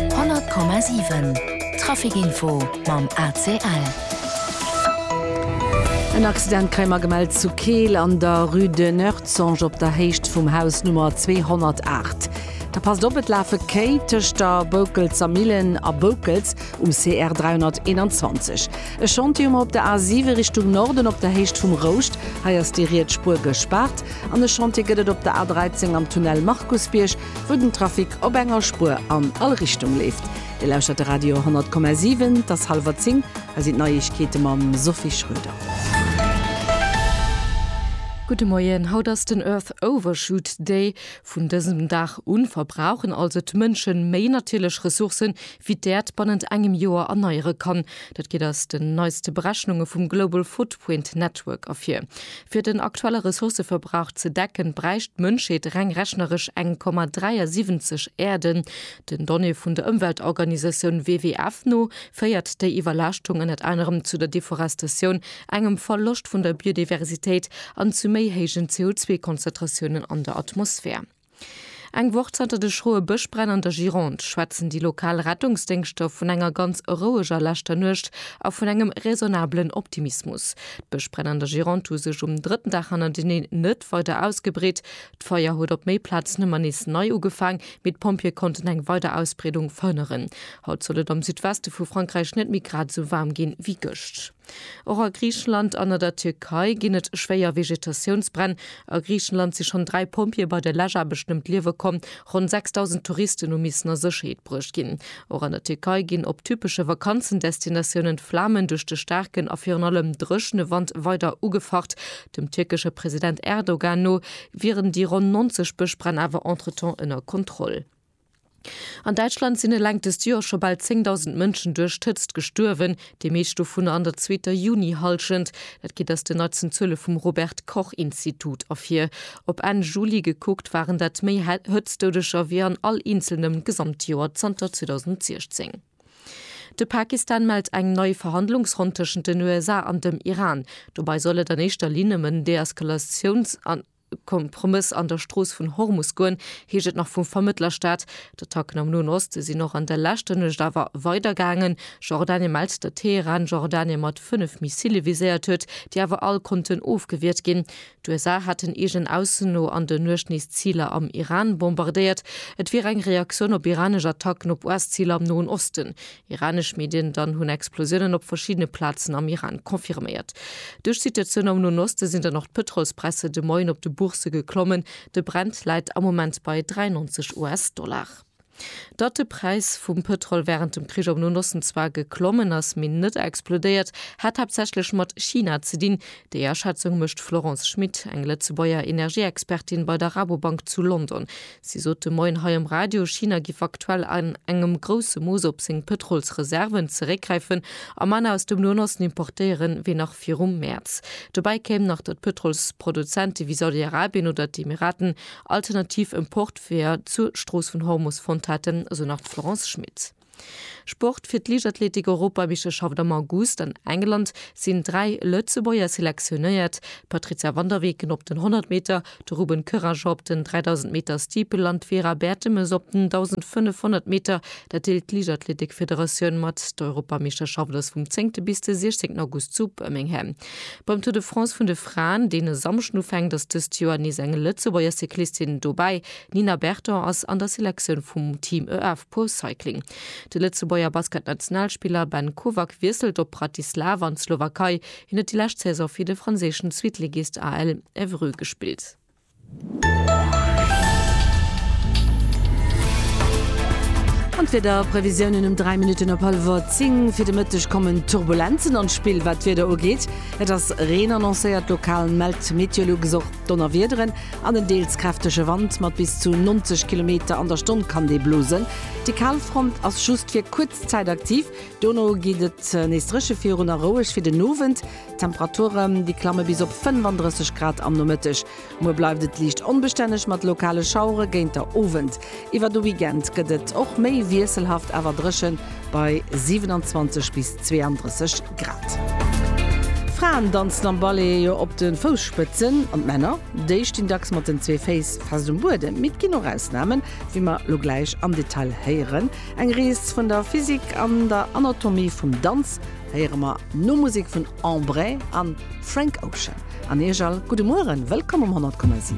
100,7 Traficinfo mam ACL. En Accident kréie mer gemellt zu Keel an der Rue de Noertzonge op der Héicht vum Haus Nummer 208. Da passt op, et lafe Kéi tëscht der Boukelzer Millen a Boukels um CR 321. E Chantier hu mer op der A 7 Richtung Norden op der Héicht vum Rouscht. Hei ass déi riets Spuer gespaart. An e Chantier gëtt et op der A 13 am Tunnel Markusbierg. wou den Trafic op enger Spuer an all Richtung leeft. Dir lauschtert de Radio 10,7. Et ass hallwer zéng. Hei sinn d'Neiegkeete mam Sophie Schröder. Gudde Moien, haut ass den Earth Overshoot Day. Vun dësem Dag u verbrauchen also d'Mënsche méi natierlech Ressourcë wéi d'Äerd bannent engem Joer erneiere kann. Dat geet aus den neiste Berechnunge vum Global Footprint Network ervir. Fir den aktuelle Ressourcëverbrauch ze decken, bräicht d'Mënschheet reng rechneresch eng Komma 73 Äerden. Den Donnéeë vun der Ëmweltorganisatioun WWF no féiert déi Iwwerlaaschtung ënnert anerem zu der Deforestatioun, engem Verloscht vun der Biodiversitéit an zu méi héijen CO2-Konzentratiounen an der Atmosphär. Eng Woch zanter de schroe Bëschbränn an der Gironde schwätzen déi lokal Rettungsdéngschter vun enger ganz roueger leschter Nuecht a vun engem raisonnabelen Optimismus. D'Bëschbränn an der Gironde hu sech um drëtten Dag hannerteneen net weider ausgebreet. D'Feier huet op méi Plazen ëmmer nees nei ugefaang, mee d'Pompjeeë konnten eng weider Ausbreedung verhënneren. Haut soll et am Südweste vu Frankräich net méi grad esou waarm ginn, wéi gëscht. Och a Griichenland an a der Tierkei ginn et schwéier Vegetatiounsbränn. A Griichenland si schonn dräi Pompjeeë bei der Läschaarbechten ëm d'Liewe komm. Ronn 6.000 Touristen hu missen a Sécherheet bruecht ginn. Och an der Tierkei ginn op typesche Vakanzendestinatiounen d'Flamen duerch de staarken a virun allem dréchene Wand weider ugefacht. Dem tierkesche President Erdogan no wieren déi ronn 90 Bëschbränn awer entretemps ënner Kontroll. An Däitschland sinn eleng dëst Joer scho bal 10.000 Mënschen duerch d'Hëtzt gestuerwen, déi meescht dovunner an der zweeter Juni-Hallschent. Dat geet aus den neitsten Zuele vum Robert-Koch-Institut ervir. Op Enn Juli gekuckt waren dat méi Hëtztdoudeger wéi an all eenzelnem Gesamtjoer zanter 2016. De Pakistan mellt eng nei Verhandlungsronn tëschent den USA an dem Iran. Dobei soll et an éischter Linn ëm en Deeskalatiouns an. Kompromëss an der Strooss vun Hormus goen, heescht et nach vum Vermëttlerstaat. D'Attacken am Noen Oste sinn och an der leschter Nuecht awer weider gaangen. Jordanien mellt, datt Teheran Jordanien mat fënnef Missile viséiert huet, déi awer all konnten ofgewiert ginn. D'USA hätten eegen Aussen no an der Nuecht nees Ziler am Iran bombardéiert. Et wier eng Reaktioun op iranesch Attacken op US-Ziler am Noen Osten. Iranesch Medien dann hunn Explosiounen op verschiddene Plazen am Iran confirméiert. Duerch d'Situatioun am Noen Oste sinn dann och d'Pëtrolspräisser de Moien op de Boursë geklommen. De Brent läit am Moment bei 93 US-Dollar. Datt de Präis vum Pëtrol wärend dem Krich am Noen Osten zwar geklommen ass, mee net explodéiert, hätt haaptsächlech mat China ze dinn. Déi Aschätzung mécht d'Florence Schmit, eng Lëtzebuerger Energieexpertin bei der Rabobank zu London. Si sot de Moien hei um Radio, China giff aktuell an engem grousse Mooss op seng Pëtrolsreserven zeréckgräifen a manner aus dem Noen Osten importéieren, wéi nach virum Mäerz. Dobäi kéim nach, datt Pëtrolsproduzente wéi Saudi-Arabien oder d'Emiraten alternativ Importweeër zur Strooss vun Hormus fonnt hätten, esou nach d'Florence Schmit. Sport, Fir d'Liichtathletik-Europameisterschaft am August an England sinn dräi Lëtzebuerger selektionéiert, d'Patrizia van der Weken op den 100 Meter, de Ruben Courageux op den 3000 Meter Steeple an d'Vera Bertemes op den 1500 Meter. Dat deelt d'Liichtathletik-Federatioun mat. D'Europameisterschaft ass vum 10 bis de 16 August zu Birmingham. Beim Tour de France vun de Fraen, deen e Samschden ufänkt, ass dëst Joer nees eng Lëtzebuerger Cyclistin dobäi. D'Nina Berton ass an der Selektioun vum Team EF. Pro Cycling. De Lëtzebuerger Basketnationalspiller Ben Kovac wiesselt op Bratislava an d'Slowakei. Hien huet déi lescht Saison fir de franséischen Zweetligist AL Évreux gespillt. An d'Wiederprevisiounen um 3 Minutten op hallwer 10. Fir de Mëtteg kommen Turbulenzen an d'Spill, wat d'Wieder ugeet. Et ass Reen annoncéiert, lokal mellt d'Meteolux och. Donnerwiederen an en deels kräftege Wand mat bis zu 90 Kilometer an der Stonn kann dee blosen. Déi Kalfront ass just fir kuerz Zäit aktiv, dono geet et nees dréche virun a roueg fir den Owend. D'Temperature déi klamme bis op 35 Grad am Nomëtteg. Muer bleift et liicht onbestänneg mat lokale Schauere géint der Owend. Iwwer de Weekend gëtt et och méi wiesselhaft awer dréchen, bei 27 bis 32 Grad. D'Fraen danzen am Ballet jo op de Fousspëtzen an d'Männer, déi stinn dacks mat den zwee Féiss fest um Buedem. Mee et ginn och Ausnamen, wéi mer lo gläich am Detail héieren. Eng Rees vun der Physik an der Anatomie vum Danz héiere mer no Musek vun Embre a Frank Ocean. An Iech all gudde Mueren, wëllkomm um 100,7.